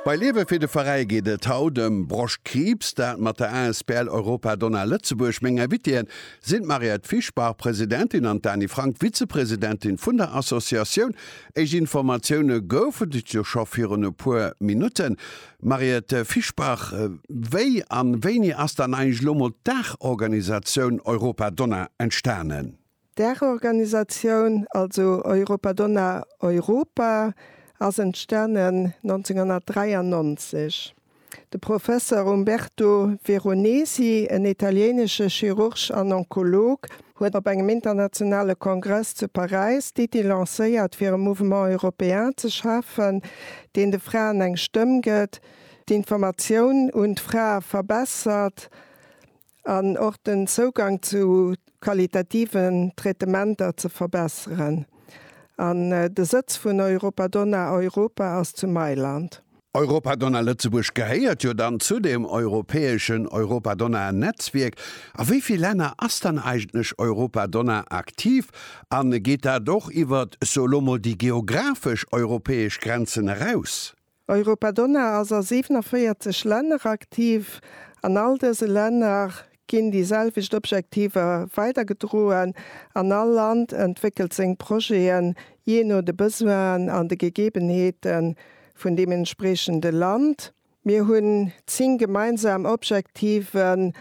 Bei Liewe fir de Veräi geet et haut ëm Broschtkriibs, dat mat der asbl Europa Donna Lëtzebuerg. Meng Invitée sinn d'Mariette Fischbach, Presidentin, an d'Dani Frank, Vizepresidentin vun der Associatioun. Éischt Informatioune goufen et jo scho virun e puer Minutten. Mariette Fischbach, wéi an wéini ass dann eigentlech elo mol d'Daachorganisatioun Europa Donna entstanen? D'Dachorganisatioun, also Europa Donna Europa, ass entstanen 1993. De Professer Umberto Veronesi, en italienesche Chirurg an Onkolog, huet op engem internationale Kongress zu Paräis d'Iddi lancéiert, fir e Mouvement européen ze schafen, deen de Fraen eng Stëmm gëtt, d'Informatioun un d'Frae verbessert, an och den Zougang zu qualitativen Traitementer ze verbesseren an de Sëtz vun Europadonna Europa ass zu Mailand. Europadonna Lëtzebuerg gehéiert jo dann zu dem europäeschen Europadonna Netzwierk. A wéi vill Länner ass dann eigentlech Europadonna aktiv an geet dat och iwwert, elo mol, déi geographesch europäesch Grenzen eraus? Europadonna ass a 47 Länner aktiv. An all dëse Länner ginn déi selwecht Objektiver weidergedroen an all Land entwéckelt seng Projeten jee no de Besoinen an de Gegebenheete vun deem entspriechende Land. Mir hunn 10 gemeinsam Objektiven,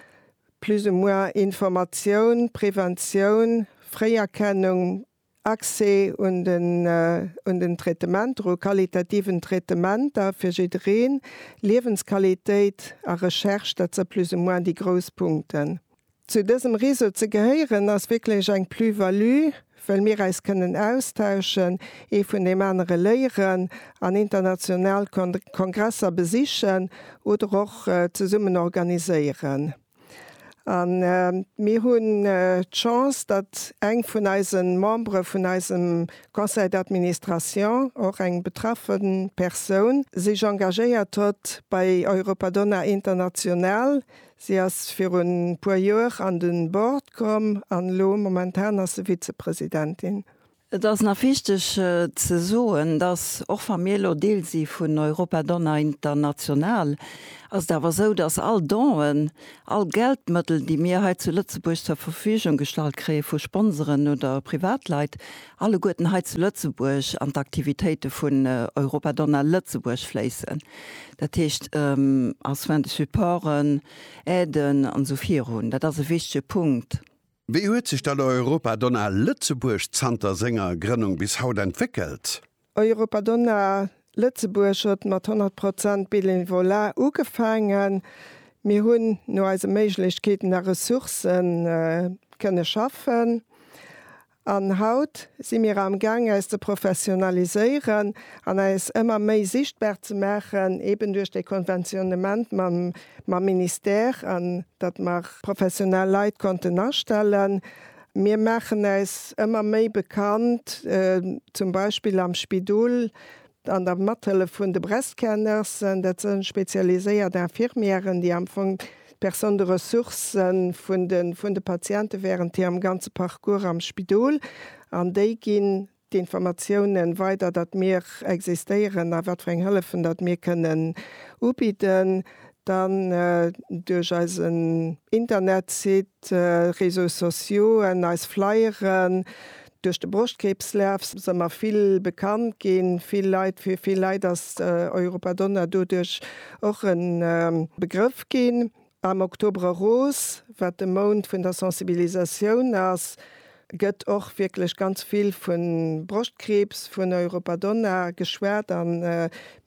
plus ou moins Informatioun, Preventioun, Fréierkennung, Accès un den un den Traitementer, u qualitativen Traitementer fir jiddereen, Liewensqualitéit a Recherche, dat se plus ou moins déi grouss Punkten. Zu dësem Réseau ze gehéieren ass wierklech eng Plus-value, well mir eis kënnen austauschen, ee vun deem anere léieren an international Kon Kongresser besichen oder och zesummen organiséieren. An mir hunn d'Chance, datt eng vun eise Membere vun eisem Conseil d'administration, och eng betraffe Persoun, sech engagéiert huet bei Europadonna International. Si ass virun e puer Joer an de Board komm an elo momentan ass se Vizepresidentin. Et ass nach wichteg ze soen, dass, och wa mir elo Deel si vun Europa Donna International, ass et awer esou, dass all Donen, all Geldmëttel, déi mir hei zu Lëtzebuerg zur Verfügung gestallt kréie vu Sponsoren oder Privatleit, alleguerten hei zu Lëtzebuerg an d'Aktivitéite vun Europa Donna Lëtzebuerg fléissen. Dat heescht, als Soins de supporten, Aiden an esou virun. Dat ass e wichtege Punkt. Wéi huet sech dat Europadonna Lëtzebuerg zanter senger Grënnung bis haut entwéckelt? Europadonna Lëtzebuerg huet mat 100 Prozent Bénévolat ugefaangen. Mir hunn no eise Méiglechkeeten a Ressourcen kënne schaffen an haut si mir am Gaang äis ze professionaliséieren an äis ëmmer méi sichtbar ze maachen, eben duerch de Konventionnement mam mam Ministère an datt mer professionell Leit konnten astellen. Mir maachen äis ëmmer méi bekannt, zum Beispill am Spidol an der Mathëllef vun de Breast-Care-Nursen. Dat sënn spezialiséiert Infirmièren, déi am Fong d'Personne de ressource sënn vun de Patienten während hirem ganze Parcours am Spidol an déi ginn d'Informatiounen weider, datt mir existéieren a wat fir eng Hëllefen datt mir kënnen ubidden, dann duerch eisen Internetsite, Réseaux sociauxen, eis Flyeren, duerch de Broschtkriibslaf si mer vill bekannt ginn, vill Leit, fir vill Leit ass Europa Donna doduerch och e Begrëff ginn. Am Oktober Rose, wat de Mount vun der Sensibilisatioun ass, gëtt och wierklech ganz vill vu Broschtkriibs, vun Europadonna geschwat a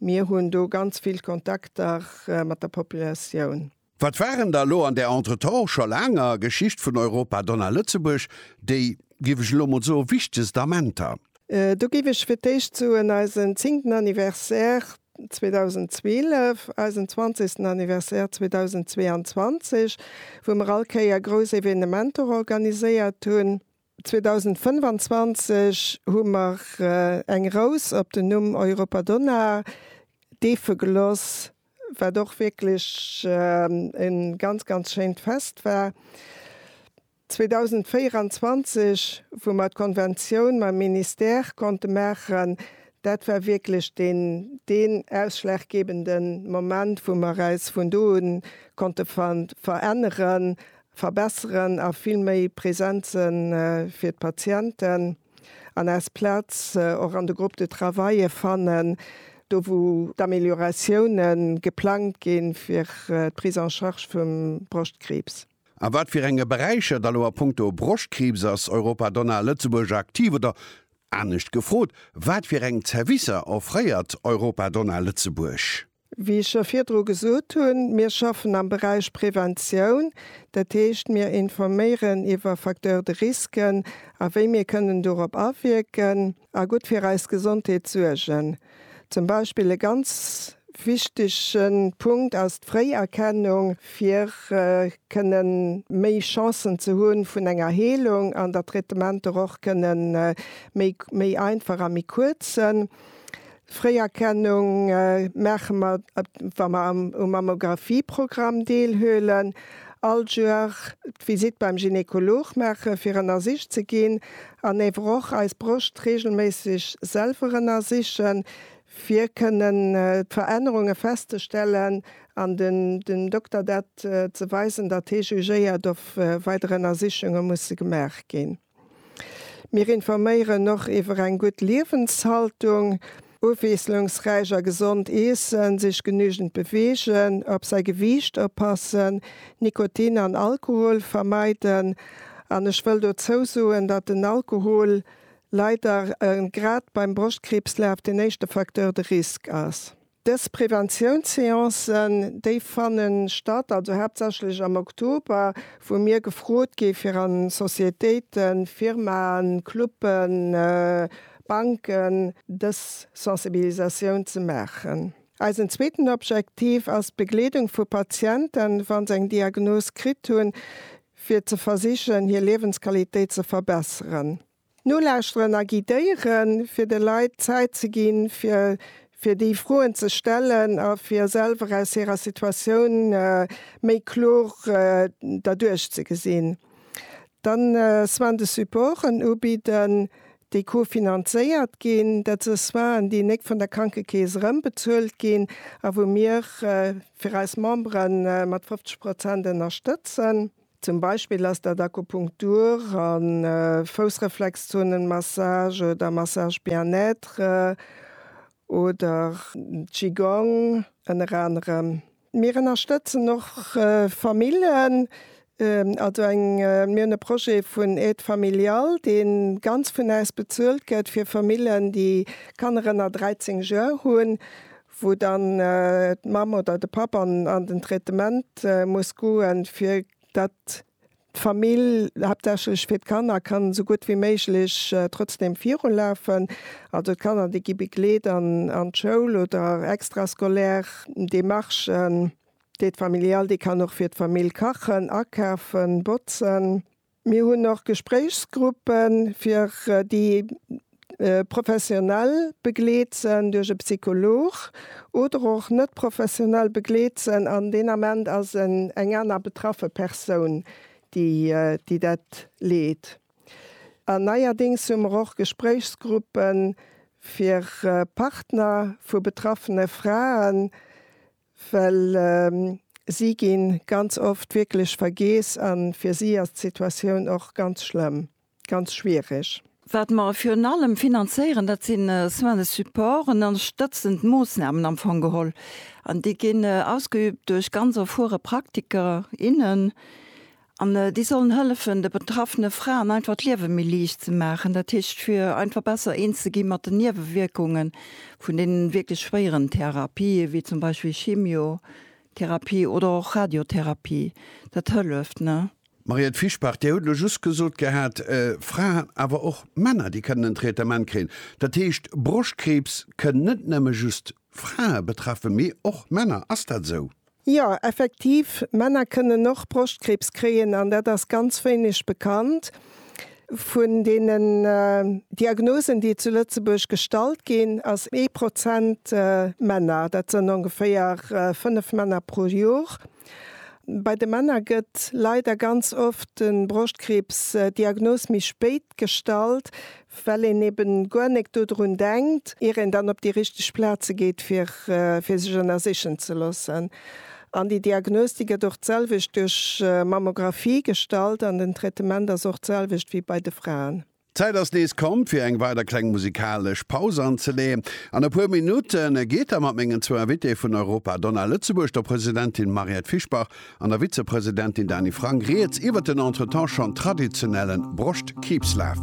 mir hunn do ganz vill Kontakter mat der Populatioun. Wat waren da lo an där entretemps scho laanger Geschicht vun Europadonna Lëtzebuerg déi, géif ech elo mol soen, wichtegst Amenter? Do géif ech fir d'éischt soen eisen zéngten Anniversaire. 2012, eisen zwanzegsten Anniversaire 2022, wou mer all Kéier grouss Evenementer organiséiert hunn. 2025 hu mer eng Rous op den Numm Europa Donna deefe geloss, wat och wierklech e ganz, ganz schéint Fest war. 2024, wou mer d'Konventioun mam Ministère konnte maachen, dat war wierklech deen, deen ausschlaggebende Moment, wou mer eis vun do un konnte veränneren, verbessern a vill méi present se fir d'Patienten an eis Plaz och an de Groupes de travaille fannen, do wou d'Amélioratioune geplangt ginn fir d'Prise en charge vum Broschtkriibs. A wat fir enge Beräicher, da lo a punkto Broschtkriibs, ass Europa Donna Lëtzebuerg aktiv? Oder anescht gefrot, wat fir eng Zerwisser offréiert Europa Donna Lëtzebuerg? Wéi ech scho virdru gesot hunn, mir schaffen am Beräich Preventioun. Dat heescht, mir informéieren iwwer Facteurs de risques a wéi mir kënnen dorop awierken. a gutt fir eis Gesondheet suergen. Zum Beispill e ganz wichtege Punkt ass d'Fréierkennung, fir kënne méi Chancen ze hu vun enger Heelung an datt d'Traitementer och kënne méi einfach a méi kuerz sënn. Fréierkennung maache mer, wa mer am Mammographieprogramm deelhuelen, all Joer d'Visitt beim Gynekolog maache fir ënnersicht ze ginn an ewer och eis Broscht reegelméisseg selwer ënnersichen, fir kënnen d'Verännerunge festzestellen an dem Dokter dat ze weisen, datt hee jugéiert of weider Ënnersichunge musse gemaach ginn. Mir informéieren och iwwer eng gutt Liewenshaltung, ofwiesslungsräich a gesond iessen, sech genügend beweegen, op säi Gewiicht oppassen, Nikotin an Alkohol vermeiden. An ech wëll dozou soen, datt den Alkohol leider grad beim Broschtkriibs laf den éischte Facteur de risque ass. Dës Preventiounsseancen, déi fanne statt, also haaptsächlech am Oktober, wou mir gefrot gi fir a Societéiten, Firmaen, Cluben, Banken dës Sensibilisatioun ze maachen. Eisen zweeten Objektiv ass d'Begleedung vu Patienten, wa se eng Diagnos kritt hunn, fir ze versichen hir Liewensqualitéit ze verbesseren. Nolauschteren a guidéieren, fir de Leit d'Zäit ze ginn, fir fir déi Froen ze stellen a fir selwer aus hirer Situatioun méi kloer derduerch ze gesinn. Dann Soins de supporten ubidden, déi co-finanzéiert ginn. Dat si Soinen, déi nek vun der Krankekeess erëmbezuelt ginn a wou mir fir eis Membere mat 50 Prozent ënnerstëtzen. Zum Beispill ass dat Akupunktur a Foussreflexzonenmassage oder Massage Bien-être oder Qigong ënner anerem. Mir ënnerstëtzen och Famillen, also eng, mir hunn e Projet vun Aide Familiale, dee ganz vun äis bezuelt gëtt, fir Famillen, déi Kanner ënner 13 Joer hunn, wou dann d'Mamm oder de Papp an an den Traitement muss goen, fir datt d'Famill, haaptsächlech fir d'Kanner, kann esou gutt wéi méiglech trotzdem virulafen. Also d'Kanner, déi gi begleet an an d'Schoul oder extrascolaire Démarchen. D'Aide familiale, déi kann och fir d'Famill kachen, akafen, botzen. Mir hunn och Gespréichsgruppe fir déi professionell begleet sen duerch e Psycholog oder och net professionell begleet sen an deen Ament ass en eng aner betraffe Persoun déi déi dat leet. An neierdéngs hu mer och Gespréichsgruppe fir Partner vu betraffene Fraen well si gi ganz oft wierklech vergeess a fir si ass d'Situatioun och ganz schlëmm, ganz schwiereg. Wat mer virun allem finanzéieren, dat si Soins de support an ënnerstëtzend Moossnamen am Fong geholl. An déi ginn ausgeübt duerch ganz erfuere Praktiker, innen. An déi sollen hëllefen, de betraffene Fraen einfach d'Liewe méi liicht ze maachen, dat heescht fir einfach besser eens ze gi mat den Niewewierkunge vun deenen wierklech schwéieren Therapië wéi zum Beispill Chimiotherapie oder och Radiotherapie. Dat hëlleft, ne? Mariette Fischbach, Dir hutt elo just gesot gehat, Fraen, awer och Männer, déi kënnen en Traitement kréien. Dat heescht, Broschtkriibs kënn net nëmme just Frae betraffen, mee och Männer. Ass dat esou? Jo, effektiv, Männer kënnen och Broschtkriibs kréien an dat ass ganz wéineg bekannt. Vun deenen Diagnosen, déi zu Lëtzebuerg gestallt ginn, ass ee Prozent Männer. Dat sënn ongeféier fënnef Männer pro Jor. Bei de Männer gëtt leider ganz oft de Broschtkriibs Diagnos méi spéit gestallt, well een eben guer nek dodrun denkt, ier een dann op déi richteg Plaze geet, fir fir sech ënnersichen ze loossen. An déi Diagnos, déi gëtt och d'selwecht duerch Mammographie gestallt an den Traitement ass och d'selwecht wéi bei de Fraen. D'Zäit ass nees komm, fir eng weider kleng musikalesch Paus anzeleeën. An e puer Minutte geet da mat mengen zwou Invitéë vun Europa Donna Lëtzebuerg, der Presidentin Mariette Fischbach an der Vizepresidentin Dany Frank, rieds iwwert den entretemps schonn traditionellen Broschtkiibslaf.